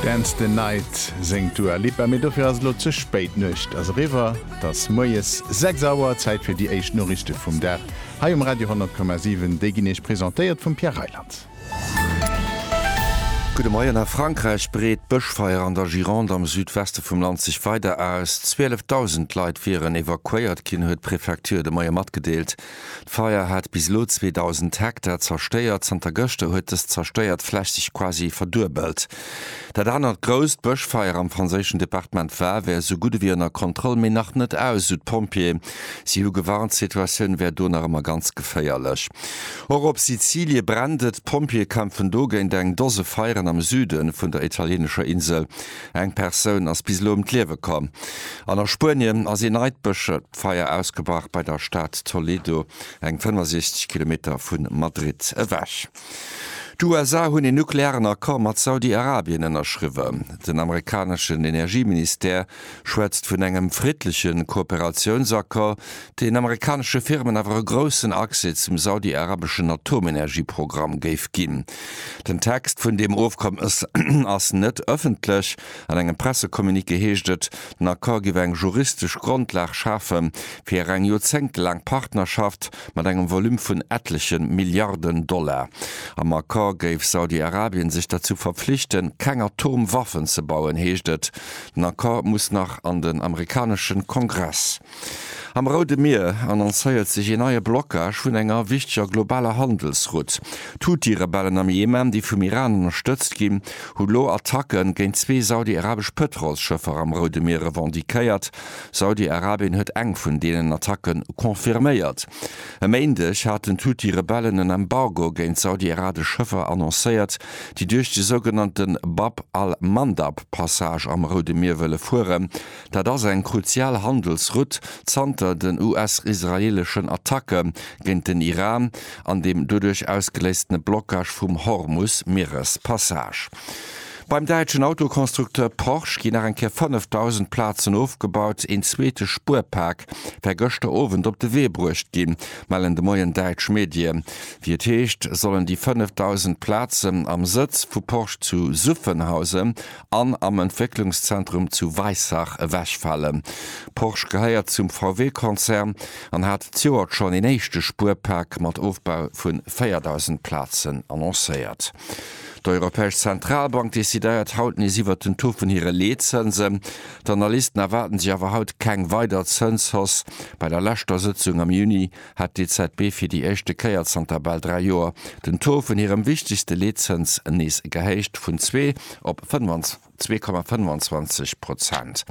Dance the Night séngt d'Dua Lipa, mee dofir ass et elo ze spéit. D'Nuecht ass eriwwer, et ass moies 6 Auer. Zäit fir déi éischt Noriichte vum Dag hei um Radio 10,7. Déi ginn Iech presentéiert vum Pierre Reyland. Gudde Moien. A Frankräich breet d'Bëschfeier an der Gironde am Südweste vum Land sech weider aus. 12.000 Leit wieren evakuéiert ginn, huet d'Prefecture de Moie matgedeelt. D'Feier hat bis elo 2.000 Hektar zerstéiert. Zanter gëschter huet dës zerstéiert Fläch sech quasi verduebelt. Dat anert grousst Bëschfeier am franséischen Departement Var wär esou gutt ewéi ënner Kontroll, mee nach net aus, esou d'Pompjeeë. Si hu gewarnt, d'Situatioun wär do nach ëmmer ganz geféierlech. Och op Sizilie brennt et. D'Pompjeeë kämpfen do géint eng Dose Feieren am Süde vun der italienescher Insel. Eng Persoun ass bis elo ëm d'Liewe komm an a Spuenien ass ee neit Bëschfeier ausgebrach bei der Stad Toledo, eng 65 Kilometer vu Madrid ewech. D'USA hunn een nuklearen Accord mat Saudi-Arabien ënnerschriwwen. Den amerikaneschen Energieministère schwätzt vun engem friddleche Kooperatiounsaccord, den amerikanesche Firmen awer e groussen Accès zum saudi-arabeschen Atomenergieprogramm géif ginn. Den Text vun deem Ofkommes ass net ëffentlech. An engem Pressecommuniqué heescht et, den Accord géif eng juristesch Grondlag schafe fir eng joerzéngtelaang Partnerschaft mat engem Volume vun ettleche Milliarden Dollar. Am Accord géif Saudi-Arabien sech derzou verpflichten, keng Atomwaffen ze bauen, heescht et. Den Accord muss nach an den amerikanesche Kongress. Am Roude Mier annoncéiert sech een neie Blockage vun enger wichteger globaler Handelsrutt. D'Huthi-Rebellen am Jemen, déi vum Iran ënnerstëtzt ginn, hu lo Attacke géint zwee saudi-arabesch Pëtrolsschëffer am Roude Mier revendiquéiert. Saudi-Arabien huet eng vun deenen Attacke confirméiert. E Méindeg haten d'Huthi-Rebellen en Embargo géint saudi-arabesch Schëffer annoncéiert, déi duerch de sougenannte Bab al-Mandab-Passage am Roude Mier wëlle fueren, Dat ass eng kruzial Handelsrutt zanter den US-israeeleschen Attacke géint den Iran an dem doduerch ausgeléistene Blockage vum Hormus-Mierespassage. Beim däitschen Autoconstructeur Porsche ginn nach eng Kéier 5.000 Plazen ofgebaut. Een zweete Spuerpak wär gëschter Owend op de Wee bruecht ginn, mellen de Moien däitsch Medien. Wéi et heescht, sollen déi 5.000 Plazen am Sëtz vu Porsche zu Suffenhausen an am Entwécklungszentrum zu Weissach ewechfalen. Porsche gehéiert zum VW-Konzern an hat d'Joert schonn een éischte Spuerpak mat Ofbau vu 4.000 Plazen annoncéiert. D'Europäesch Zentralbank decidéiert haut nees iwwert den Taux vun hire Leetzënsen. D'Analysten erwaarden sech awer haut keng weider Zënshausse. Bei der leschter Sëtzung am Juni hat d'EZB fir déi éischte Kéier zanter bal dräi Joer den Taux vun hirem wichtegste Leetzëns nees gehéicht, vun zwee op zwee Komma 25 Prozent.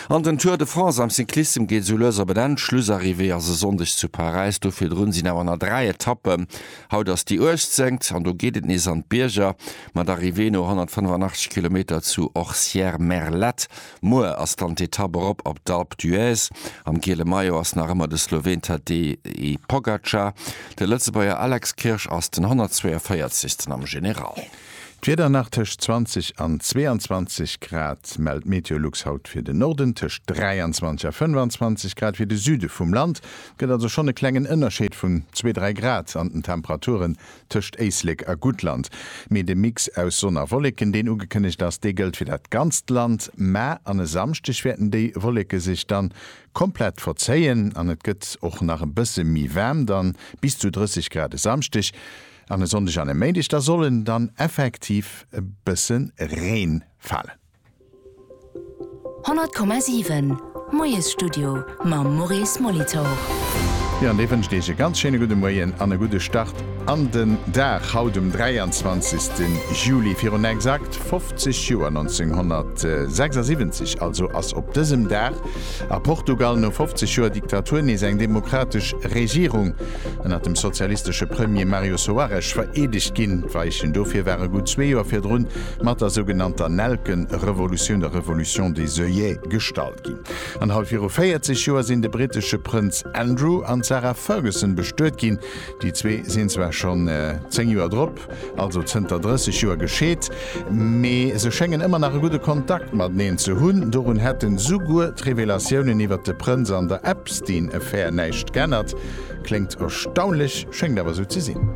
An den Tour de France am Cyclissem geet esou lues op en Enn. Schlussarrivée ass e Sonndeg zu Paräis, do virdrun sinn awer nach dräi Etappen. Haut ass déi 18. an do geet et nees an d'Bierger, mat Arrivée no 185 Kilometer zu Orcières-Merlette Muer ass dann d'Etapp erop op d'Alpe d'Huez. Am giele Maillot ass nach ëmmer de Sloween Tadej Pogacar. De Lëtzebuerger Alex Kirsch ass den 142. am General. D'Wieder nach tëscht 20 an 22 Grad, mellt Meteolux haut fir den Norden. Tëscht 23 a 25 Grad fir de Süde vum Land. Et gëtt also schonn e klengen Ënnerscheed vun zwee, dräi Grad an den Temperaturen. tëscht Éislek a Guttland, mee de Mix aus Sonn a Wolleken, deen ugekënnegt ass, dee gëllt fir dat ganzt Land, mä an e Samschdeg wäerten déi Wolleke sech dann komplett verzéien an et gëtt och nach e bësse méi waarm, dann bis zu 30 Grad e Samschdeg an e Sonndeg an e Méindeg, da soll dann effektiv e bësse Reen falen. 100,7 Moiesstudio mam Maurice Molitor. Jo, an dee wënscht Iech e ganz schéine gudde Moien an e gudde Start an den Dag haut um 23. Juli virun exakt 50 Joer, 1976 also, ass op dësem Dag a Portugal no 50 Joer Diktatur nees eng demokratesch Regierung ënnert dem sozialistesche Premier Mario Soares vereedegt ginn. D'Weichen dofir ware gutt zwee Joer virdrun mat der sougenannter Nelken-Revolutioun, der Révolution des œillets, gestalt ginn. An haut viru 40 Joer sinn de brittesche Prënz Andrew an d'Sarah Ferguson bestuet ginn. Déi zwee sinn zwar schonn 10 Joer drop, also zënter 30 Joer, gescheet, mee se schéngen ëmmer nach e gudde Kontakt mateneen ze hunn. Dorun hätten souguer d'Revelatiounen iwwer de Prënz an der Epstein-Affär näischt g'ännert. Kléngt erstaunlech, schéngt awer esou ze sinn.